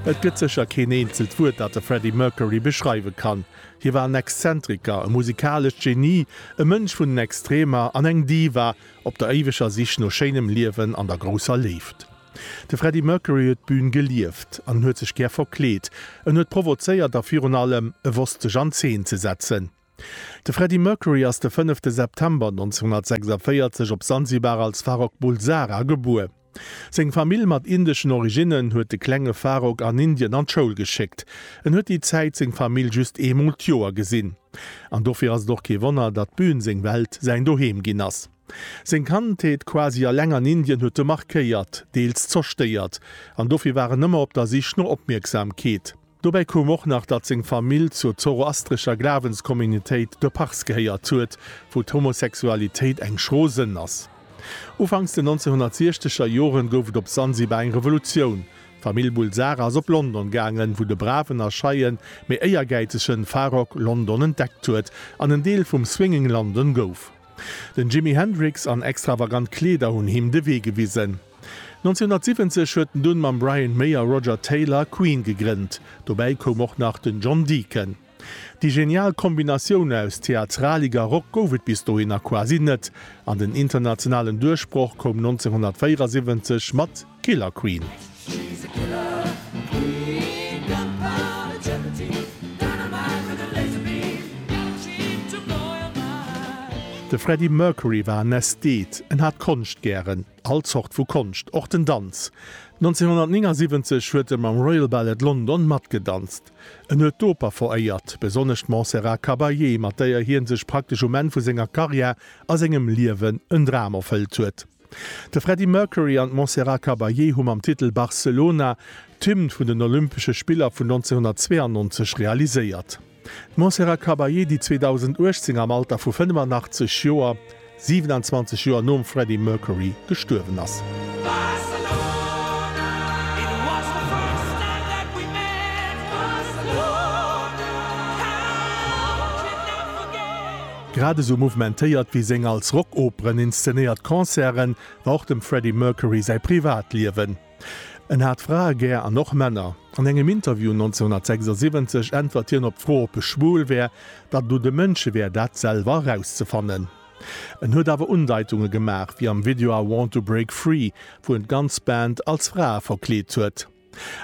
Et gëtt sécher keen eenzelt Wuert, dat de Freddie Mercury beschreiwe kann. Hie war en Exzentriker, e musikalescht Genie, e Mënsch vun den Extremer an eng Diva op der éiweger Sich no schéinem Liewen an der grousser Léift. De Freddie Mercury huet d'Bün gelieft an en huet sech gär verkleet. En huet provozéiert a virun allem, e wosst sech an Zeen ze setzen. De Freddie Mercury ass de 5 September 1946 op Sansibar als Farrokh Bulsara gebuer. Seng Famill mat indeschen Originnen huet de klenge Farrokh an Indien an d'Schoul geschéckt. En huet déi Zäit seng Famill just eemol d'Joer gesinn. An dofir ass et och kee Wonner, datt d'Bün seng Welt, säin Doheem ginn ass. Seng Kandheet quasi eleng an Indien huet e markéiert, deels zerstéiert. An dofir war en ëmmer op der Sich no Opmierksamkeet. Dobäi koum och nach, datt seng Famill zur zoroastrescher Glawenscommunitéit de Pars gehéiert huet, wou d'Homosexualitéit eng schro Sënn ass. Ufanks den 1960er Joren gouf et op Sansibar eng Revolutioun. D'Famill Bulsara ass op London gaangen, wou de braven a scheien, mee éiergäizegen Farrokh London entdeckt huet an en Deel vum Swinging London gouf. Den Jimi Hendrix an extravagant Kleeder hunn him de Wee gewisen. 1970 huet en dunn mam Brian May a Roger Taylor Queen gegrënnt. Dobäi koum och nach den John Deacon. Déi genial Kombinatioun aus Theatralik a Rock gouf et bis dohinner quasi net, an den internationalen Duerchbroch koum 1974 mat Killer Queen. De Freddie Mercury war en Ästhet, en hat Konscht gären. All Zort vu Konscht, och den Danz. 1979 huet e mam Royal Ballet London matgedanzt. En huet d'Oper veréiert, besonnesch d'Montserrat Caballé, mat däer hien sech praktesch um Enn vu senger Karriär a sengem Liewen en Dram erfëllt huet. De Freddie Mercury an d'Montserrat Caballé hu mam Titel Barcelona d'Hymn vun den Olympesche Spiller vun 1992 realiséiert. D'Montserrat Caballé, déi 2018 am Alter vu 85 Joer, 27 Joer nom Freddie Mercury, gestuerwen ass. Grad esou mouvementéiert wéi seng als Rockoperen inszenéiert Concerte war och dem Freddie Mercury säi Privatliewen. En hat Frae gär an och Männer. An engem Interview 1976 äntwert hien op d'Fro ob e schwul wär, datt et u de Mënsche wär dat selwer erauszefannen. En huet awer Undeitunge gemaach, wéi am Video I Want to Break Free, wou en d'ganz Band als Frae verkleet huet.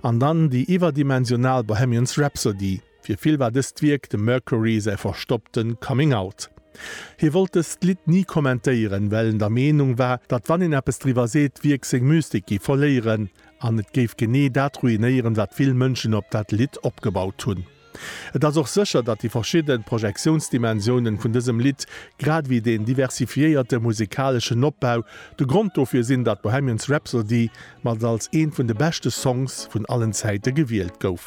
An dann déi iwwerdimensional Bohemians Rhapsody. Fir vill war dëst Wierk dem Mercury säi verstoppte Coming Out. Hie wollt dëst Lidd ni kommentéieren, well en der Meenung war, datt wann een eppes driwwer seet, d'Wierk seng Mystik géif verléieren an et géif genee dat ruinéieren, wat vill Mënschen op dat Lidd opgebaut hunn. Et ass och sécher, datt déi verschidde Projektiounsdimensiounen vun dësem Lidd, grad ewéi deen diversifiéierte musekaleschen Opbau, de Grond dofir sinn, datt Bohemian's Rhapsody mat als ee vun de beschte Songs vun allen Zäite gewielt gouf.